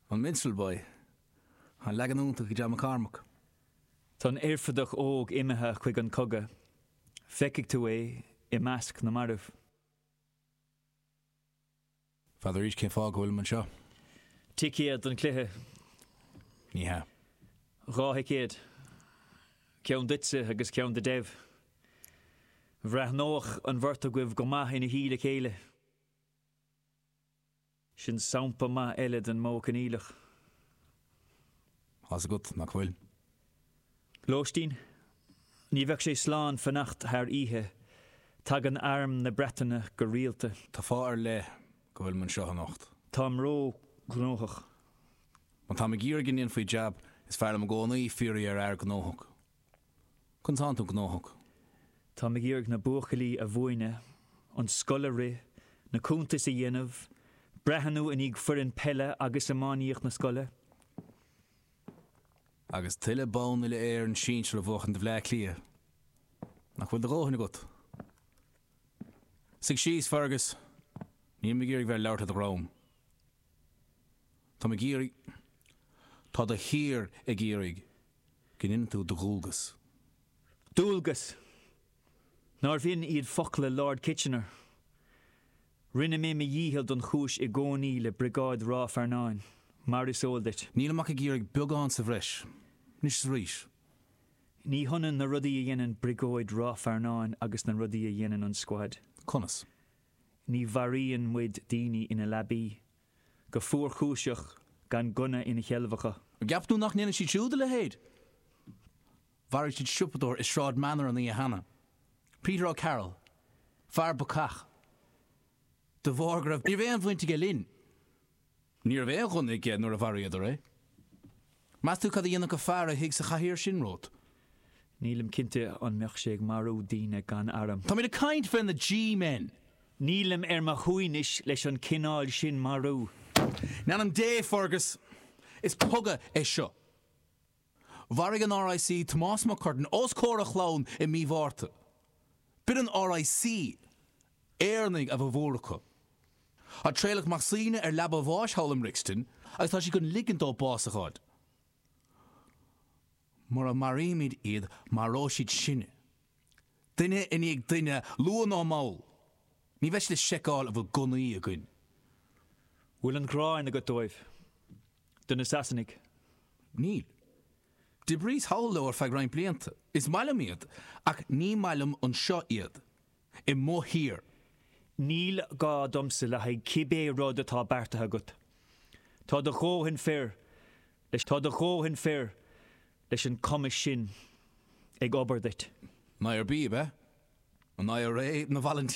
An Minstrel Boy, an leagan iontach ag John McCormack. Tá an oirfideach óg imithe chuig an cogadh. Feicfidh tú é i measc na mairbh. Fiafraíos cén fáth go bhfuilim anseo. Ticéad don chluiche? Ní hea. Dhá thicéad. Ceann duitse agus ceann do Dev. Bhreathnódh an bheirt agaibh go maith ina shuí le chéile. Sin sampla maith eile den modh coinníollach. Tá a fhios agat, nach bhfuil? Lóistín, Ní bheadh sé slán fanacht thar oíche. Tagann arm na Breataine go rialta. Tá fáth ar leith go bhfuilim anseo anocht. Táim ró-ghnóthach. Má táim ag iarraidh go ndéanfaí jab, is fearr liom i gcónaí fiafraí ar fhear gnóthach. Conas atá tú gnóthach? Táim ag iarraidh na buachaillí a mhúineadh, an scoil a rith, na cuntais a dhéanamh, breathnú i ndiaidh foireann peile agus iománaíocht na scoile. Agus tuilleadh bonn uile Éireann sinsir a bhuachan do Bhleá Cliath. Nach bhfuil do dhóthain agat? Suigh síos, Fergus. Nílim ag iarraidh bheith ag labhairt le do dhroim. Táim ag iarraidh. Tá do thír ag iarraidh go ndéanann tú do dhualgas. Dualgas! Nárbh in iad focla Lord Kitchener? Rinne mé mo dhícheall don chúis i gcónaí le Briogáid Ráth Fearnáin, mar is eol duit. Nílim ach ag iarraidh beagán sa bhreis, anois is arís. Ní hionann na rudaí a dhéanann Briogáid Ráth Fearnáin agus na rudaí a dhéanann an Scuad. Conas? Ní mharaíonn muid daoine ina leabaí, go fuarchúiseach gan gunna ina sheilbh acu. An gceapann tú nach ndéanfaidh siad siúd a leithéid? Mharaigh siad siopadóir i Sráid Manor an oíche cheana, Peter O'Carroll, fear bacach de bharr go raibh. Ní raibh aon bhaint aige linn. Ní raibh aon ghunna aige nuair a mharaíodar é. Meas tú cad a dhéanfadh an fear a shuigh sa chathaoir sin romhat? Nílim cinnte an mbeadh sé ag marú daoine gan airm. Táimid ag caint faoi na G-men. Nílim ar mo shuaimhneas leis an chineál sin marú. In ainm Dé, Fergus! Is cogadh é seo. Mharaigh an RIC Tomás Mac Curtain os comhair a chlann i mí Mhárta. B'in an RIC Éireannaigh a bhformhór acu. Tá Traolach Mac Suibhne ar leaba a bháis thall i mBrixton agus tá siad chun ligint dó bás a fháil. Mura maraímid iad maróidh siad sinne. Duine i ndiaidh duine, luath nó mall. Ní bheidh siad ag seiceáil an bhfuil gunnaí againn. Bhfuil an ghráin agat dóibh? Do na Sasanaigh? Níl. D'oibríos thall leo ar feadh roinnt blianta. Is maith liom iad, ach ní maith liom anseo iad. i mo thír. Níl gá domsa le haghaidh cibé rud atá beartaithe agat. Tá do dhóthain fir leis tá do dhóthain fir leis an cumas sin ag obair duit. An IRB ab ea an IRA na Volunteers?